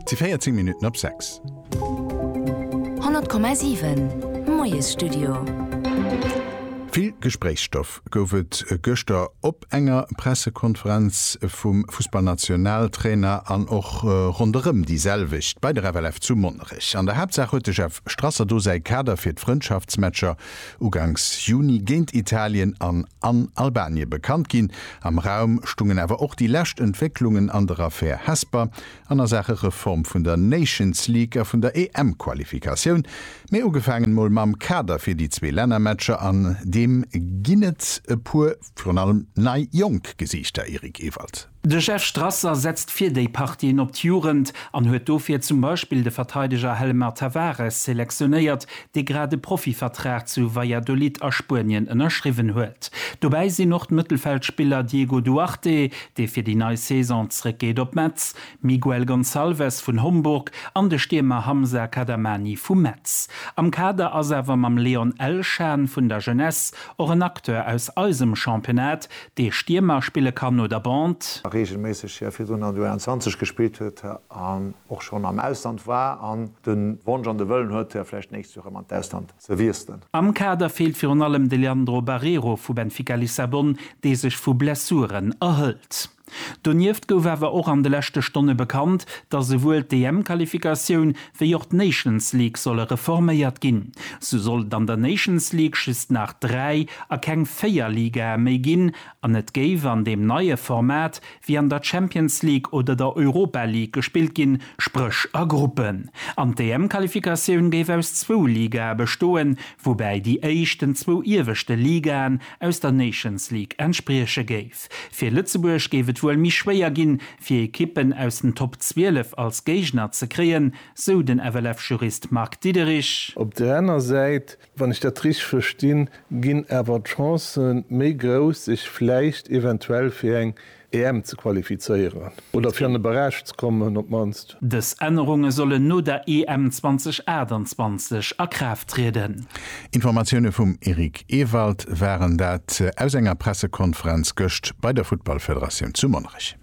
T 14 Minutten op 6. 100,7 Moiesstudio. Vill Gespréichsstoff gouf et gëschter op enger Pressekonferenz vum Fussballnationaltrainer an och ronderëm déi selwecht bei der FLF zu Monnerech. An der Haaptsaach huet de Jeff Strasser do säi Kader fir d'Frëndschaftsmatcher ugangs Juni géint Italien an an Albanien bekannt ginn. Am Raum stungen awer och déi lescht Entwécklungen an der Affär Hesper an a Saache Reform vun der Nations League a vun der EM-Qualifikatioun. Mee ugefaangen mol mam Kader fir déi zwee Lännermatcher, an deem ginn et e puer, virun allem nei jonk Gesiichter, Eric Ewald. De Jeff Strasser setzt fir déi Partien op d'Jugend an huet dofir zum Beispill de Verteideger Helmar Tavares selektionéiert, dee grad e Profivertrag zu Valladolid a Spuenien ënnerschriwwen huet. Dobäi sinn och d'Mëttelfeldspiller Diego Duarte, dee fir déi nei Saison zréckgeet op Metz, Miguel Gonçalves vun Homburg an de Stiermer Hamza Kadamani vu Metz. Am Kader ass awer mam Leon Elshan vun der Jeunesse och en Acteur aus eisem Championnat, dee Stiermer spille kann oder Bond. A reegelméisseg hir virdrun an der U21 gespillt huet an och schonn am Ausland war an de Wonsch an de Wëllen huet, vläicht d'nächst Joer erëm an d'Ausland ze wiesselen. Am Kader feelt virun allem de Leandro Barreiro vu Benfica Lissabon, dee sech vu Blessuren erhëlt. Donieft gouf awer och an de leschte Stonne bekannt, datt esouwuel d'EM-Qualifikatioun Wéi och d'Nations League solle reforméiert ginn, sou soll et an der Nations League just nach dräi a keng véier Ligae méi ginn an et géif an deem neie Format wéi an der Champions League oder der Europa League gespillt ginn, spréch a Gruppen. An d'EM-Qualifikatioun géif aus zwou Ligae bestoen, woubäi déi éischt den zwou ieweschte Ligaen aus der Nations League entsprieche géif. Fir Lëtzebuerg géif et wuel méi schwéier ginn, fir Ekippen aus den Top 12 als Géigner ze kréien, sou den FLF-Jurist Marc Diederich. Op där aner Säit, wann ech dat richteg verstinn, ginn awer d'Chancë méi grouss, sech vläicht eventuell fir eng EM ze qualifizéieren oder fir an e Barrage ze kommen op d'mannst. Aarbecht. Dës Ännerunge sollen no der EM 2028 a Kraaft trieden. Informatioune vum Eric Ewald waren dat aus enger Pressekonferenz gëscht bei der Futtballfederatioun zu Monnerech.